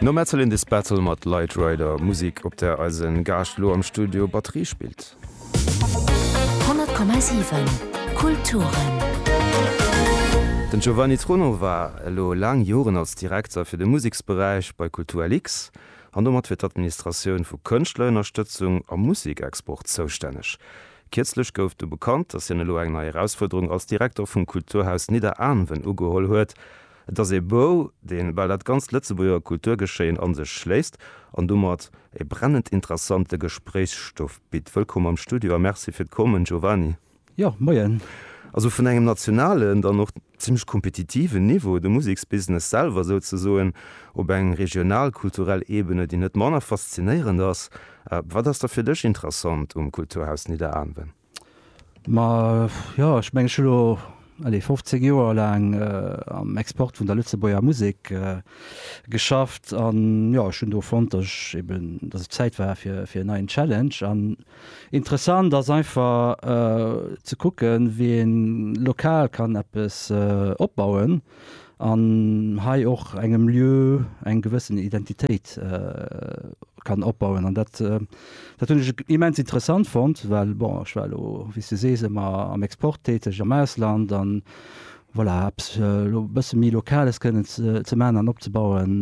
No Metal in this Battle mat Light Rider, Musek op där eise Gaascht elo am Studio Batterie spillt. 100,7 Kulturen. Den Giovanni Truno war elo laang Joren als Direkter fir de Museksberäich bei Kulturlix an domat fir d'Administratioun vu Kënschtlerënnerstëtzung a Musekexport zoustänneg. Kierzlech gouf du bekannt, datt hien elo eng nei Erausfuerderung als Direkter vum Kulturhaus Nidderaanwen ugeholl huet. Et ass ee Bou, deen bal dat ganzt Lëtzebuerger Kulturgeschéien an sech schléisst an domat ee brennend interessante Gespréichsstoff bitt. Wëllkomm am Studio a Merci fir d'Kommen, Giovanni. Jo, Moien. Also vun engem nationalen, dann och zimmlech kompetitiven Niveau, de Museksbusiness selwer souzesoen, op eng regional, kulturell Ebene, déi net manner faszinéierend ass. Wat ass da fir dech interessant um Kulturhaus Nidderaanwen? Ma jo, ech mengen, ech hunn elo, allez, 15 Joer laang am Export vun der Lëtzebuerger Musek geschafft. An jo, ech hunn do fonnt, datt ech eben, datt et Zäit war fir en neien Challenge. An interessant ass einfach ze kucken, wien lokal kann eppes opbauen. an hei och engem Lieu eng gewëssen Identitéit kann opbauen. An dat hunn ech immens interessant fonnt, well bon ech war elo, wéi s de sees, ëmmer am Export täteg, am Ausland an voilà, eppes elo e bësse méi Lokales kënnen ze maachen an opzebauen,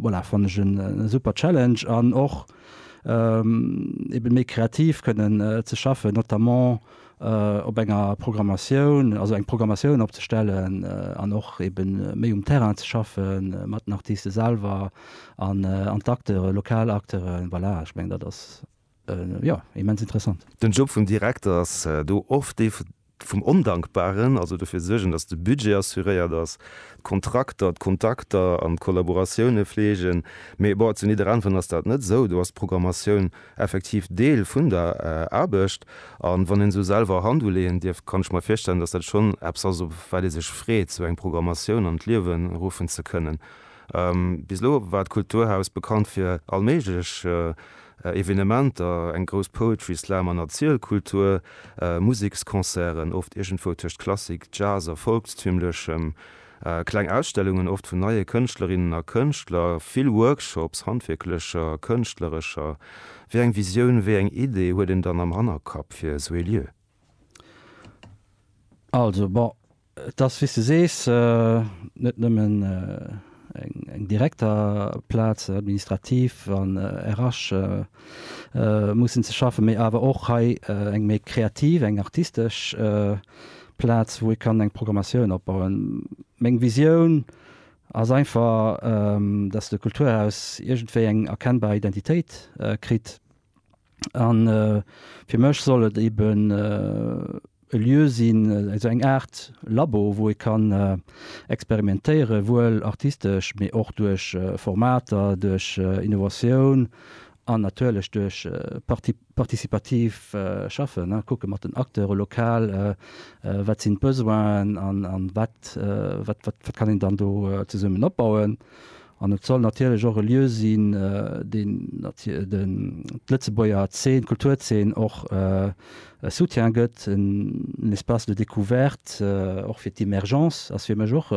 voilà, fannt ech e super Challenge. An och eeben méi kreativ kënnen ze schaffen, notamment op enger Programmatioun, also eng Programmatioun opzestellen an och eben méi um Terrain ze schaffe mat den Artiste selwer an an d'Acteure, lokal Acteure, voilà, ech mengen dat ass jo immens interessant. Den Job vum Direkter ass do oft dee vum Ondankbaren, also dofir suergen, datt de Budget assuréiert ass, d'Kontrakter, d'Kontakter an d'Kollaboratioune fleegen, mee bon, zu nidderanven ass dat net esou, do ass d'Programmatioun. effektiv Deel vun der Aarbecht. A wann een esou selwer Hand uleeën dierf, kann ech mer virstellen, datt dat schonn eppes ass, op wat ee sech freet, esou eng Programmatioun an d'Liewe ruffen ze kënnen. Bis elo war d'Kulturhaus bekannt fir all méiglech Evenementer, eng grouss Poetry Slam an Erzielkultur, Museksconcerten, oft iergendwou tëscht Klassik, Jazz a Volkstümlechem. Kleng Ausstellungen, oft vun neie Kënschtlerinnen a Kënschtler, vill Workshops, handwierklecher, kënschtlerescher. Wéi eng Visioun, wéi eng Idee huet een dann am Hannerkapp fir esou ee Lieu? Also bon, et ass, wéi s de sees, net nëmmen eng direkter Plaz, administrativ an RH mussen ze schaffen, mee awer och hei eng méi kreativ, eng artistesch Plaz wou ee kann eng Programmatioun opbauen. Meng Visioun ass einfach, datt de Kulturhaus iergendwéi eng erkennbar Identitéit kritt. A fir mech soll et eben e Lieu sinn, esou eng Aart Labo wou ee kann experimentéiere wuel artistesch, mee och duerch Formater, duerch Innovatioun an natierlech duerch Partie Participativ schaffen, kucke mat den Acteure lokal, wat sinn d'Besoinen a wat kann een dann do zesummen opbauen. An et soll natierlech och e Lieu sinn, deen d'Lëtzebuerger Zeen, d'Kulturzeen och e Soutien gëtt, en Espace de découverte och fir d'Emergence ass fir mech och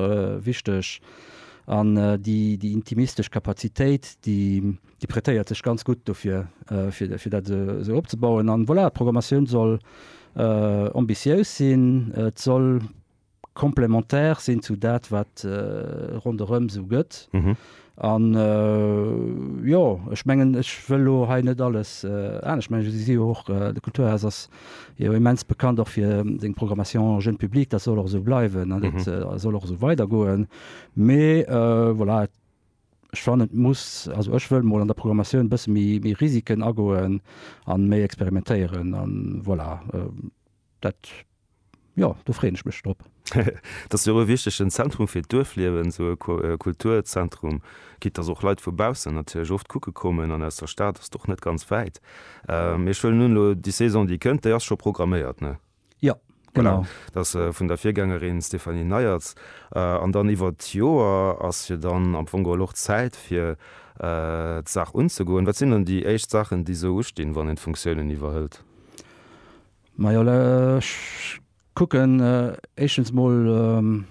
wichteg. An déi intimistesch Kapazitéit, déi. Déi prêtéiert sech ganz gutt dofir, fir dat esou opzebauen. An voilà, d'Programmatioun soll ambitiéus sinn, et soll complémentaire sinn zu dat, wat ronderëm esou gëtt. An jo, ech mengen, ech wëll elo hei net alles anescht mengen. Ech si jo och, de Kulturhaus ass jo immens bekannt och fir seng Programmation jeune public. Dat soll och esou bleiwen an dat soll och esou weidergoen. Mee voilà, et. Ech fannen, et muss, also ech wëll mol an der Programmatioun e bësse méi Risiken agoen a méi experimentéieren a voilà. Dat, jo, do freeën ech mech drop. Et ass jo och e wichtegen Zentrum fir d'Duerfliewen, esou e Kulturzentrum, quitte dass och Leit vu baussen natierlech oft kucke kommen an aus der Stad ass et och net ganz wäit. Mee ech wëllen un elo déi Saison, déi kënnt, déi ass scho programméiert, ne? Jo, genau. Dat ass vun der Virgängerin Stéphanie Neyertz. An dann iwwer d'Joer ass jo dann am Fong geholl och Zäit fir d'Saach unzegoen. Wat sinn dann déi éischt Saachen, déi esou ustinn, wann een d'Funktiounen iwwerhëlt? Majo, ech kucken éischtens mol.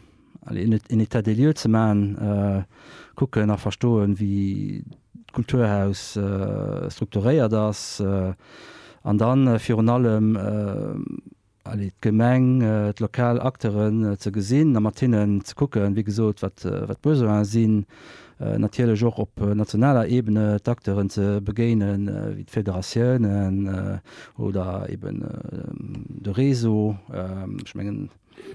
allez, en État des lieux ze maachen, kucken a verstoen, wéi d'Kulturhaus strukturéiert ass an da virun allem, allez, d'Gemeng, d'lokal Acteuren ze gesinn a mat hinnen ze kucken, wéi gesot, wat d'Besoine sinn. Natierlech och op nationaler Ebene d'Acteuren ze begéinen, wéi d'Federatiounen oder eeben de Réseau. Ech mengen.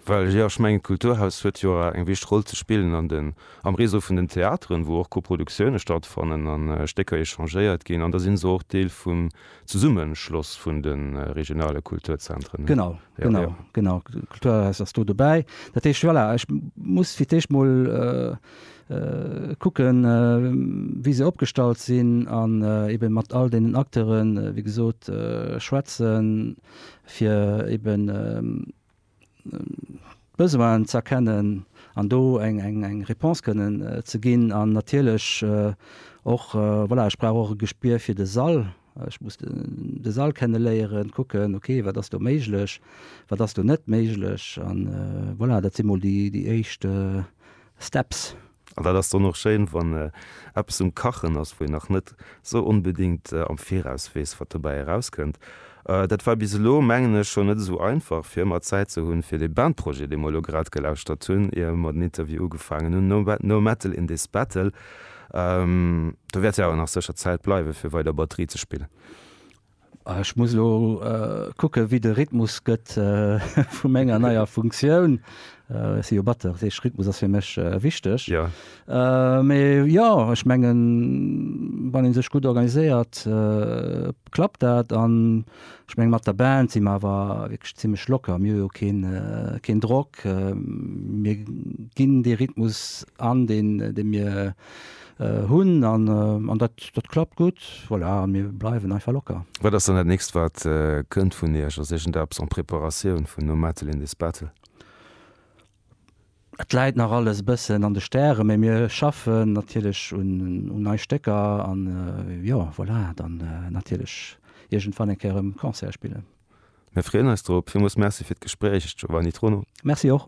Well jo, ech mengen, d'Kulturhaus huet jo awer eng wichteg Roll ze spillen an den, am Réseau vun den Theateren, wou och Koproduktioune stattfannen an Stécker échangéiert ginn. An da sinn se och Deel vum Zesummeschloss vun de regionale Kulturzentren. Genau, genau, genau. D'Kulturhaus ass do dobäi. Dat heescht, voilà, ech muss fir d'éischt mol kucken, wéi se opgestallt sinn an eebe mat all deenen Acteuren, wéi gesot, schwätzen. fir eben d'Besoinen z'erkennen an do eng Réponse kënnen ze ginn. An natierlech och, voilà, ech brauch och e Gespier fir de Sall. Ech muss de Sall kenneléieren, kucken, ok, wat ass do méiglech, wat ass do net méiglech. An voilà, dat si mol déi éischt Steps. An dat ass dann och schéin, wann eppes um Kachen ass, wou een nach net esou onbedéngt am Viraus weess, wat dobäi erauskënnt. Dat war bis elo, mengen ech, schonn net esou einfach, fir ëmmer Zäit ze hunn, fir dee Bandprojet, dee mer elo grad gelauschtert hunn, ier mer den Interview ugefaangen hunn, No No Metal in This Battle. Do wäert jo awer nach sécher Zäit bleiwen, fir weider Batterie ze spillen. Ech muss elo kucken, wéi de Rhythmus gëtt vu menger neier Funktioun. Ech si jo Batteur, dat heescht Rhythmus ass fir mech wichteg. Mee jo, ech mengen, wann ee sech gutt organiséiert, klappt dat. An ech menge mat der Band si mer awer wierklech zimmlech locker. Mir hu jo keen Drock. Mir ginn dee Rhythmus an, dee mir Hunn an an dat dat klappt gutt. Voilà, an mir bleiwen einfach locker. Wat ass dann dat nächst wat kënnt vun iech? Ass iergendeppes en préparatioun vun No Metal in this Battle? Et läit nach alles e bëssen an de Stären, mee mir schaffen natierlech un un nei Stécker an jo, voilà, dann natierlech iergendwann eng Kéier erëm Concert spillen. Mir freeën eis drop. Villmools Merci fir d'Gespréich, Giovanni Trono. Merci och.